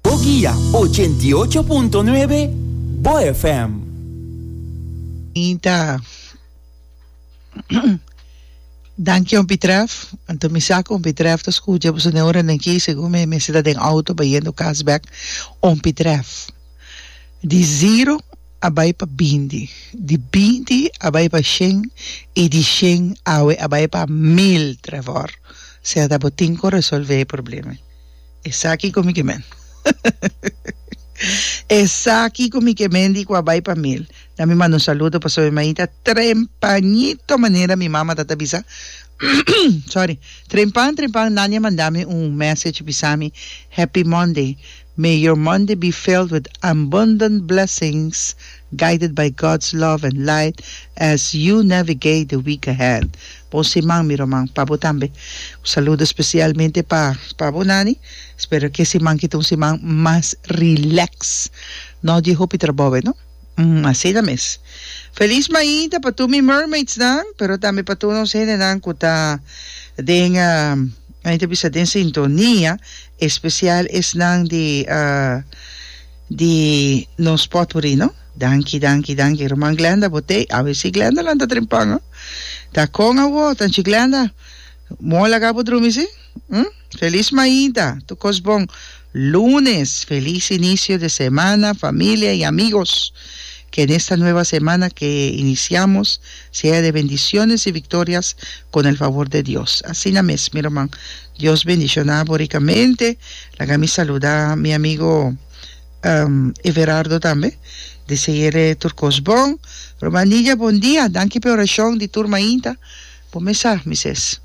Boguia, ochenta i ocho punto nuebe, bo FM. Mi ta Danki un pitrèf anto mi sa ku un pitrèf ta skucha boso den ora den ki segun mi mester ta den outo bayendo kas bèk un pitrèf di ziro a bai pa binti di binti a bai pa shen i di shen awe a bai pa mil trèf òr sea ta bo tin ku resolve e problema. Esaki cu mi ke men. Esaki cu mi ke men di cua bay pa mil. Na mi manda un saludo paso mi maita trempañito manera mi mama ta ta bisa sorry trempan trempan Nania manda mi un message bisa mi happy Monday may your Monday be filled with abundant blessings guided by God's love and light as you navigate the week ahead. Bon siman mi roman pa bo tambe. Un saludo specialmente pa pa bo Nani, spero ke siman kita un siman mas relax, no di hopi trabou e no? Umm asina mes. Feliz mainta pa tur mi mermaids nan, pero tambe pa tur nos hende nan ku ta den ain ta bisa den sintonia, especial esnan di di nos potpourri no. Danki danki danki ruman Glenda bo tei awe si Glenda lanta drin pan ho ta kon awo ta nchi Glenda mor laga bo drumi si hm felis mainta tur kos bon lunes felis inicio de semana familia y amigos ke en esta nueva semana ke iniciamos sea de bendiciones y victorias con el favor de Dios asina mes mi ruman Dios bendiciona bo ricamente laga mi saluda mi amigo Everardo tambe deseere tur kos bon Roma Nidia bon dia danki p'e orashon di tur mainta bo mesa mises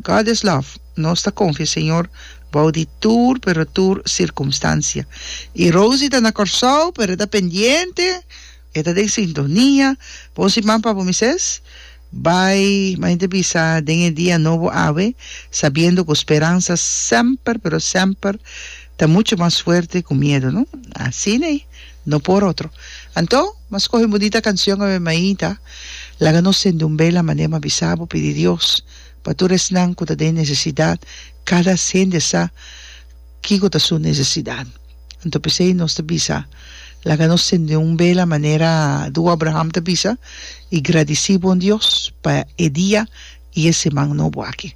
God is love nos ta konfia Señor bou di tur pero tur sirkumstansia i Rosie ta na Kòrsou pero e ta pendiente e ta den sintonia bon siman pa bo mises. Bai, mi a henter bisa den e dia nobo awe, sabiendo cu speransa semper, pero semper ta mucho mas fuerte cu miedo, no? Asina i no por otro. Anto, mas coge un bunita cancion, awe maita, laga nos sende un bela mane mi a bisa bo, pidi Dios pa tur esnan cu ta den necesidad, cada hende sa kico ta su necesidad. Anto p'esei nos ta bisa, Laga nos sende un bela manera Duo Abraham ta bisa, i gradisí Bon Dios pa e dia i e seman nobo aki.